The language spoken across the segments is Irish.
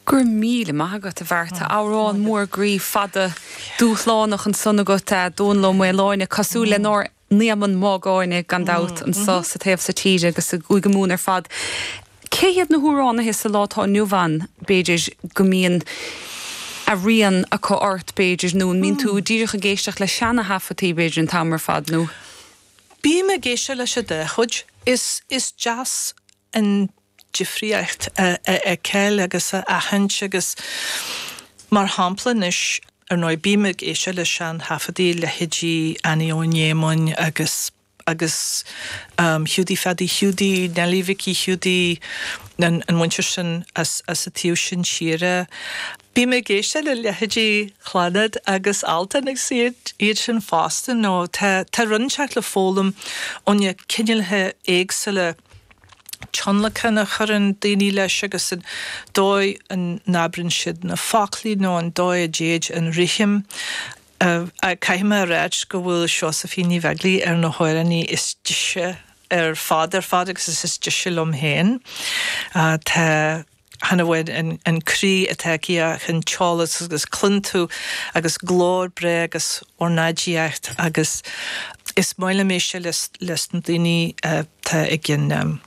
Go raibh míle maith agat, a Bhearta. Amhrán mór groí, fada, dúshlánach ansan agat, Dónall Ó Maoláine, cosúil lenár n-Éamonn Mágáine, gan dabht, anso sa taobh so tíre agus i gCúige Mumhan ar fad. Cé hiad na hamhránaithe sa lá atá inniu ann, b'fhéidir, go mbíonn a rian acu ort, b'fhéidir, nó an mbíonn tú díreach ag éisteacht le seana-thaifeadtaí, b'fhéidir, an t-am ar fad, nó. Bím ag éisteacht leis an dá chuid. Is deas. an difríocht a fheiceáil agus a aithint agus mar shampla anois, ar ndóigh, bím ag éisteacht le sean-thaifeadaí leithéidí Annie Eoghain Éamoinn agus agus Hiúdaí Phadaí Hiúdaí, Neilí Mhicí Hiúdaí, an mhuintir sin as as an taobh sin tíre, bím ag éisteacht le leithéidí Chlannad agus Altan agus iad iad sin fosta, nó tá tá rud inteacht le foghlaim ó na cineálacha éagsúla. tionlacan a chuireann daoine leis agus an dóigh a n-abrann siad na foclaí nó an dóigh a dtéid an rithim. Caithfidh mé a ráidht go bhfuil Seosaimhín Ní Bheaglaoich ar na hamhránaí is deise ar fad ar fad agus is deise liom féin. Tá. Chan amháin an croí atá aici ach an t-eolas agus cluin tú agus glór breá agus ornáidíocht agus is maith liom éisteacht leis na daoine atá ag an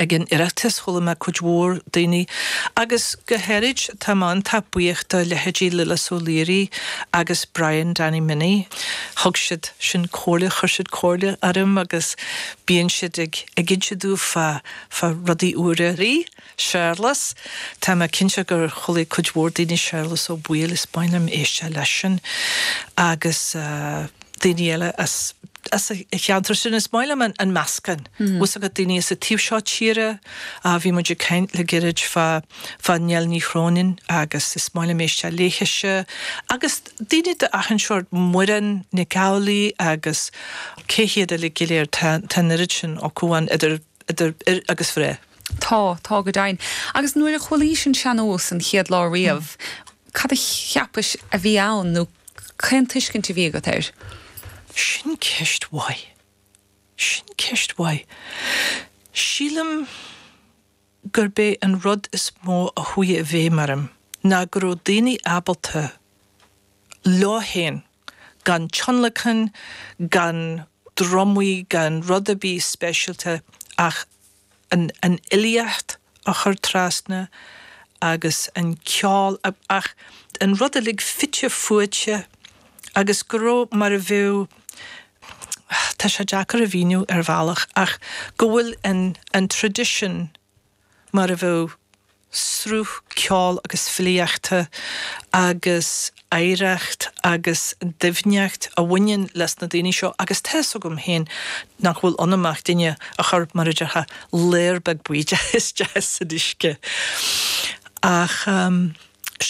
Oireachtas, chuala mé cuid mhór daoine agus go háirid tá mé iontach buíoch do leithéidí Lillis Ó Laoire agus Brian Danny Minnie, thug siad sin comhairle, chuir siad comhairle orm agus bíonn siad ag inse domh fá. fá rudaí úra. Rí Séarlas, Tá mé cinnte gur chualaidh cuid mhór daoine Séarlas Ó Baoill is maith liom éisteacht leisean agus daoine eile as as an cheantar sin is maith liom an meascán, fhios agat, daoine as an taobh seo tíre a bhí muid ag caint le gairid fá fá Nell Ní Chróinin agus is maith liom éisteacht léithise agus daoine de achan seórt Muireann Nic Amhlaoidh agus cé hiad eile go léir tá an oiread sin acu ann idir idir fhir agus mhná. Tá, tá go deimhin. Agus nuair a chualaís an sean-nós an chéad lá riamh, cad a cheapais a bhí ann nó cén tuiscint a bhí agat air? Sin ceist mhaith. Sin ceist mhaith. Sílim gurb é an rud is mó a chuaigh i bhfeidhm orm ná go raibh daoine ábalta leo féin gan tionlacan, gan drumaí, gan rud ar bith speisialta ach an fhilíocht a chur trasna agus an ceol achan rud uilig fite fuaite agus go raibh mar a bheadh, tá sé deacair a mhíniú ar bhealach ach go bhfuil an tradition, mar a bheadh sruth ceoil agus filíochta agus oidhreacht agus doimhneacht a bhaineann leis na daoine seo agus tá fhios agam féin nach bhfuil ionam ach duine a chuir, mar a déarfá, layer beag buí isteach san uisce ach.